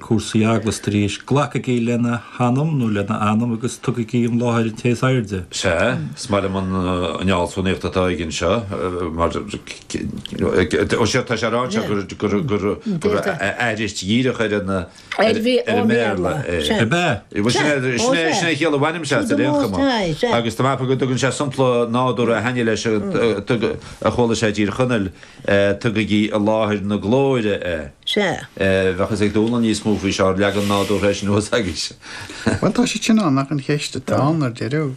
cúrsaí eaglaise arís. Glacaigí lena hanam nó lena anam agus tugaigí i láthair an Té is Airde. Sea, is maith liom an fhealsúnaíocht atá aige anseo, mar Ó sea, tá sé ag rá anseo gur aithris dhíreach ar an mBéarla é. Ab ea? Bhuel, sin é, sin é an chiall a bhainim-se as ar aon chuma. Agus tá mé ag ceapadh go dtugann sé sompla nádúrtha ina dhiaidh leis a chuala sé i dTír Chonaill, Tugaigí i láthair na glóire é. Sea. Bheadh fhios ag Dónall níos mó faoi seo, leagan ná mise, eisean thuas aigesean. Bhuel, tá siad sin ann, ach an cheist atá ann ar deireadh,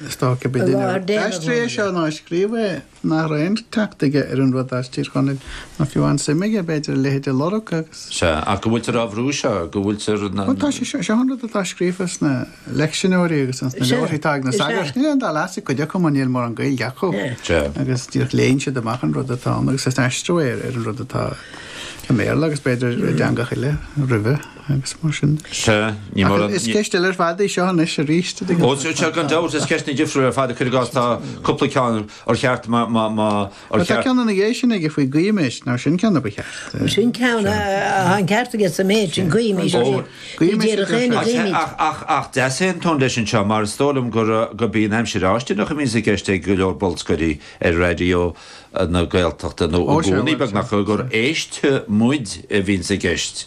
is dócha go mba duine a d'aistrigh é seo nó a scríobh é nach raibh aon teacht aige ar an rud as Tír Chonaill, ná fiú an-suim aige, b'fhéidir, a leithéid a lorg agus. Sea, ach go bhfuiltear á bhrú seo, go bhfuiltear. Bhuel, tá sé seo, seo an rud atá scríofa sna. leicseanáirí agus an sna leabharthaí tá ag na sagairt is ag léamh atá cuid acu mar níl mórán Gaeilge acu agus díreach léann siad amach an rud atá ann agus is aistriú é ar an rud atá i mBéarla agus b'fhéidir i dteangacha eile roimhe agus mar sin. Sea, ní mórán. Is ceist eile ar fad í seo anois arís. Ó, seo gan dabht, is ceist na difriúla ar fad ag cur i gcás, tá cúpla ceann ar cheart An ceann ina dhiaidh sin aige faoi go n-éist, nár sin ceann a ba cheart? Sin ceann a atá an ceart aige sa méid sin go n-éist. Ó. Ní déarfadh éinne Ach, go n-éist. ach, ach, ach deas é an tón leis anseo mar is dóigh liom gur, go mbíonn aimsir fháistineach a bhíonns i gceist ag go leor bolscairí ar Raidió na Gaeltachta nó Ó, i sea, gcónaí bhuel, sea, beagnach sea. gur éistfidh muid a bhíonns i gceist.